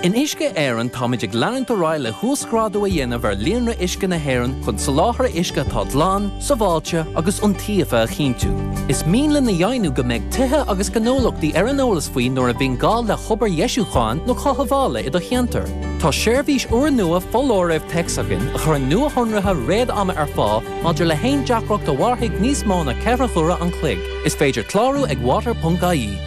In Uisce Éireann táimid ag leanúint ar aghaidh le huasghrádú a dhéanamh ar líonra uisce na hÉireann chun soláthar uisce atá glan, sábháilte agus iontaofa a chinntiú. Is mian linn a dheimhniú go mbeidh tithe agus gnólachtaí ar an eolas faoi nuair a bhíonn gá le hobair dheisiúcháin nó chothabhála i do cheantar. Tá seirbhís úrnua foláirimh téacs againn a chuireann nuashonruithe réad-ama ar fáil maidir le haon deacracht a mhairfidh níos mó ná ceithre huaire an chloig. Is féidir clárú ag water.ie.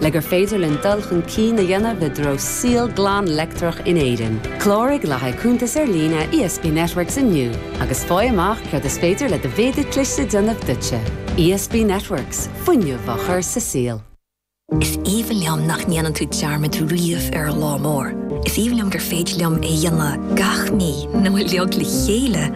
Le gur féidir linn dul chun cinn a dhéanamh i dtreo saol glan leictreach in Éirinn, cláraigh le haghaidh cuntas ar líne ESB Networks inniu agus faigh amach céard is féidir le do mhéadú cliste a dhéanamh duitse. ESB Networks, fuinneamh á chur sa saol. Is aoibhinn liom nach ndéanann tú dearmad riamh ar lá mór. Is aoibhinn liom gur féidir liom é a dhéanamh gach mí nó a leag le chéile!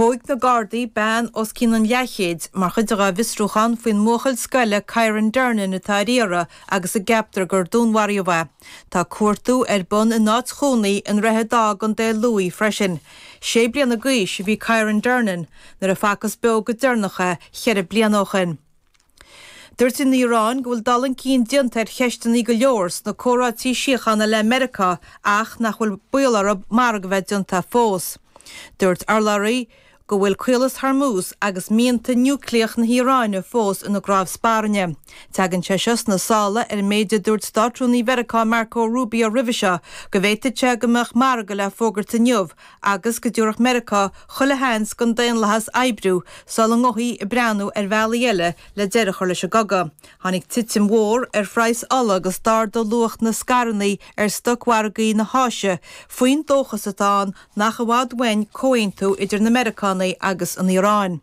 Thóig na Gardaí bean os cionn an leathchéid mar chuid dá bhfiosrúchán faoin mbuachaill scoile Kyran Durnin atá ar iarraidh agus a gceaptar gur dúnmharaíodh é. Tá cuartú ar bun in áit chónaí i nDroichead Átha i gContae Lú freisin. Sé bliana d'aois a bhí Kyran Durnin nuair a facthas beo go deireanach é cheithre bliana ó shin. Dúirt an Iaráin go bhfuil dul chun cinn déanta ar cheisteanna go leor sna comhráití síochána le Meiriceá ach nach bhfuil baol ar mhargadh a bheith déanta fós. Dúirt urlabhraí go bhfuil Caolas Hormuz agus mianta núicléach na hIaráine fós ina gcnámh spairne. Teagann sé seo sna sála ar an méid a dúirt Státrúnaí Mheiriceá Marco Rubio roimhe seo, go bhféadfadh sé go mbeadh margadh le fógairt inniu agus go dtabharfadh Meiriceá chuile sheans don daonlathas oibriú sula ngabhfaí ag breathnú ar bhealaí eile le deireadh a chur leis an gcogadh. Tháinig titim mhór ar phraghas ola agus d'ardaigh luach na scaireanna ar stocmhargaí na hÁise faoin dóchas atá ann nach i bhfad uainn comhaontú idir na Meiriceánaigh agus an Iaráin.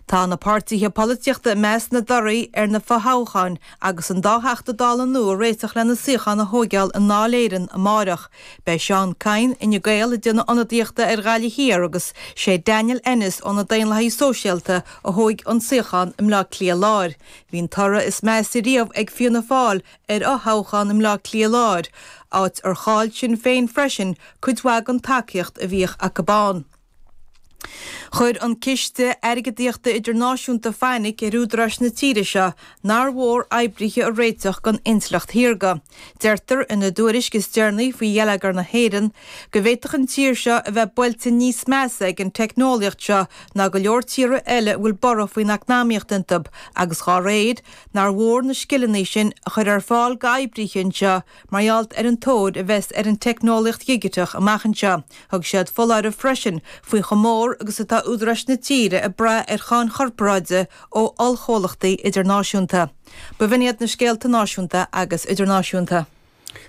Tá na páirtithe polaitíochta ag meas na dtorthaí ar na fothoghcháin Agus an dá Theachta Dála nua ag réiteach lena suíocháin a thóigeáil i nDáil Éireann amárach, beidh Seán Kyne, Fhine Gael, ag déanamh ionadaíochta ar Ghaillimh Thiar agus sé Daniel Ennis ó na Daonlathaithe Sóisialta a thógfaidh an suíochán i mBleá Cliath Láir. Bhí an toradh is measa riamh ag Fianna Fáil ar fhothoghchán i mBleá Cliath Láir, áit ar chaill Sinn Féin freisin cuid mhaith den tacaíocht a bhíodh acu ann. Chuir an Ciste Airgeadaíochta Idirnáisiúnta fainic ar údaráis na tíre seo nár mhór oibrithe a réiteach don intleacht shaorga. Deirtear ina dtuairisc is deireanaí faoi gheilleagar na hÉireann go bhféadfadh an tír seo a bheith buailte níos measa ag an teicneolaíocht seo ná go leor tíortha eile a bhfuil borradh faoin eacnamaíocht iontu agus dá réir nár mhór na scileanna sin a chur ar fáil d'oibrithe anseo Mar gheall ar an tóir a bheas ar an teicneolaíocht dhigiteach amach anseo, thug siad foláireamh freisin faoi chomh mór agus atá údaráis na tíre ag brath ar cháin chorparáide ó ollchomhlachtaí idirnáisiúnta. B'in iad na scéalta náisiúnta agus idirnáisiúnta.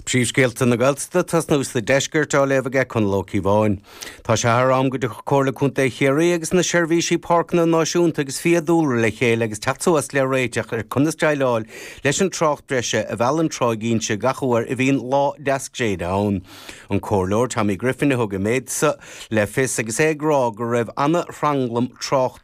Príomhscéalta na Gaeltachta, tosnú sa deisceart, á léamh ag Conall Ó Ciobháin. Tá sé thar am go dtiocfadh Comhairle Contae Chiarraí agus na Seirbhísí Páirceanna Náisiúnta agus Fiadhúlra le chéile agus teacht suas le réiteach ar conas déileáil leis an trácht breise a mheallann Tráigh Inse gach uair a bhíonn lá deas gréine ann. An Comhairleoir Tommy Griffin a thug an méid seo le fios agus é ag rá go raibh an-thranglam tráchta